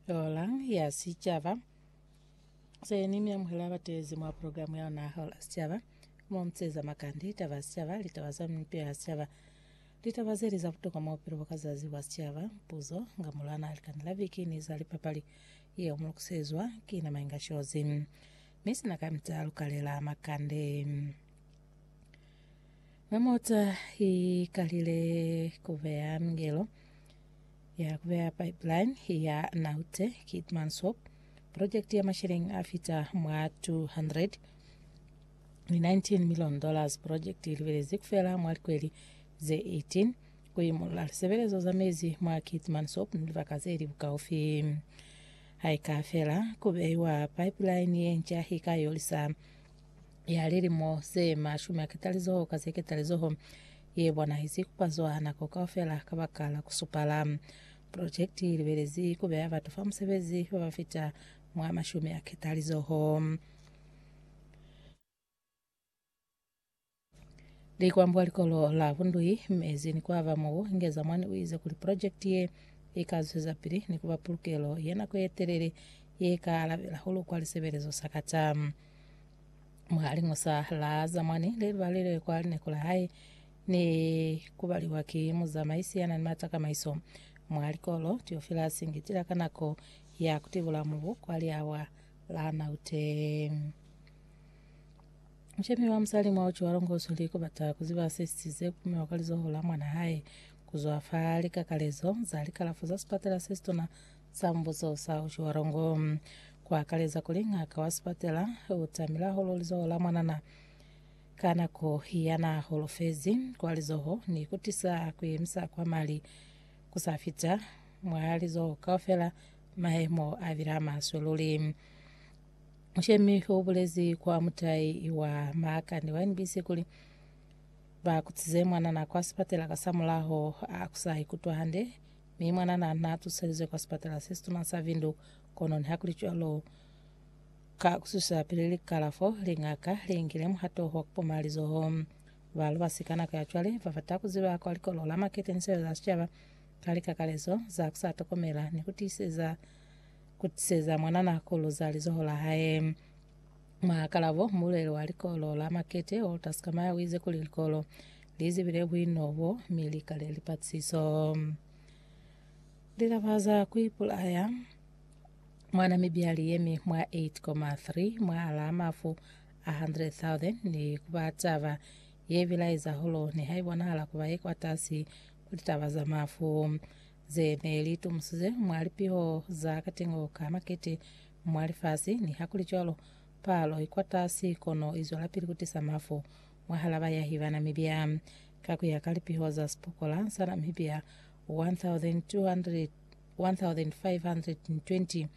Hola ya Sicaba. Seni mi amuhela bateezi mwa programu ya ona Hola ya Sicaba. Mo muteza makandi, taba ya sicaba, litaba za mipeo ya sicaba. Litaba zeli za butokwa mwa bupilo bwa ka zazi bwa sicaba, puzo, nga mulwana ha likani la viki ni za lipapali. Yeo mulukusezwa ki na Mainga Shozi. Mi sina kamita lukalela makande. Ha mota i kalile ku beya mingelo ya ku beya pipeline ya Naute Keetmanshoop, projekti ya masheleñi a fita mwa 200 ni 19 million dollars. Projekti i libelezi ku fela mwa likweli ze 18 ku imolola lisebelezo za mezi mwa Keetmanshoop ni libaka ze li bukaufi. Ha i ka fela, ku beiwa pipeline ye nca i ka yolisa ya lilimo ze mashumi a ketalizoho ka ze ketalizoho ye bonahezi kupazwa nako kaufela ka baka la kusupala projekti i libelezi kubeya batu fa musebezi ba ba fita mwa mashumi a ketalizoho Likwambwa likolo la Bundui mezi ni kuaba mubu, Ngezamwani uize kuli pulojekiti ye ika zwezapili ni kuba pulukelo ye nako yetelele ye ka alabela hahulu kwa lisebelezo sa kata. Mwa liñosa la zamwani lelubalile kwa lineko la hae ni kubaliwa ki muzamaisi yana ni mata kamaiso mwa likolo, Theophilus Ngitila ka nako ya kutibula mubu kwa liawa la 0. Mushemi wa musali mwa uci wa longoso li kubata kuziba se sisize kupumiwa kwa lizoho la mwana hae kuzwa fa likakalezo za likalafo za sipatela se situna sa mbuso sa uci wa longo, ku akaleza kuli ng'aka wa sipatela u tamile hahulu lizoho la mwanana ka nako ya na holofezi kwa lizoho ni ku tisa ku yemisa kwa mali ku sa fita mwa lizoho kaufela, mahemo a bile a maswe luli. Mushemi u bulezi kwa mutai wa Maakani wa NBC kuli, Ba kutize mwanana kwa sipatela kasamulaho a ku sa ikutwa hande, mi mwanana n'a tuselizwe kwa sipatela se situna sa Windhoek. Kono nihakulicwalo, ka ku susa pili likalafo, lingaka li ngile muhato wa ku poma lizoho. Ba lubasi ka nako ya cwale ba bata ku ziba kwa Likolo la Maketeniselo la Sicaba ka likakalezo za ku sa tokomela ni ku tiiseza ku tiseza mwanana ku luza lizoho la hae. Mwa kalabo, mulweli wa likolo la Makete, Walter Skamaya, o ize kuli likolo li zibile buino bo mi li kale lipatsiso. Lilaba za ku ipulaya mwa Namibia li yemi mwa 8,3 mwahalaa mafu a 100,000 ni ku ba taba ye bilaeza hulu nihaibonahala ku ba ye kwatasi ku litaba za mafu. ze ne li tumusize mwa lipiho za katengo ka makete mwa lifasi. Nihakulicwalo, palo i kwatasi kono i zwelapili ku tisa mafu mwahal'a bayahi ba Namibia. Ka ku ya ka lipiho za sipokola sa Namibia 1,520,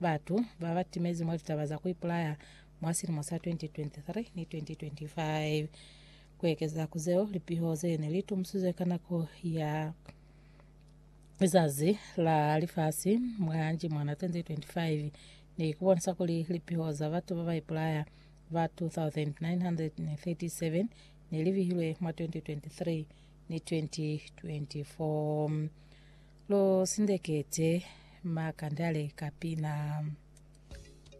batu ba ba timezi mwa litaba za ku ipulaya mwa silimo sa 2023 ni 2025. Ku ekeza ku zeo, lipiho ze ne li tumusize ka nako ya. lizazi la lifasi mwa Jimwana 2025 ni kubonisa kuli lipiho za batu ba ba ipulaya ba 2,937 ne li bihilwe mwa 2023 ni 2024. Lo sindekete makandale ka pina.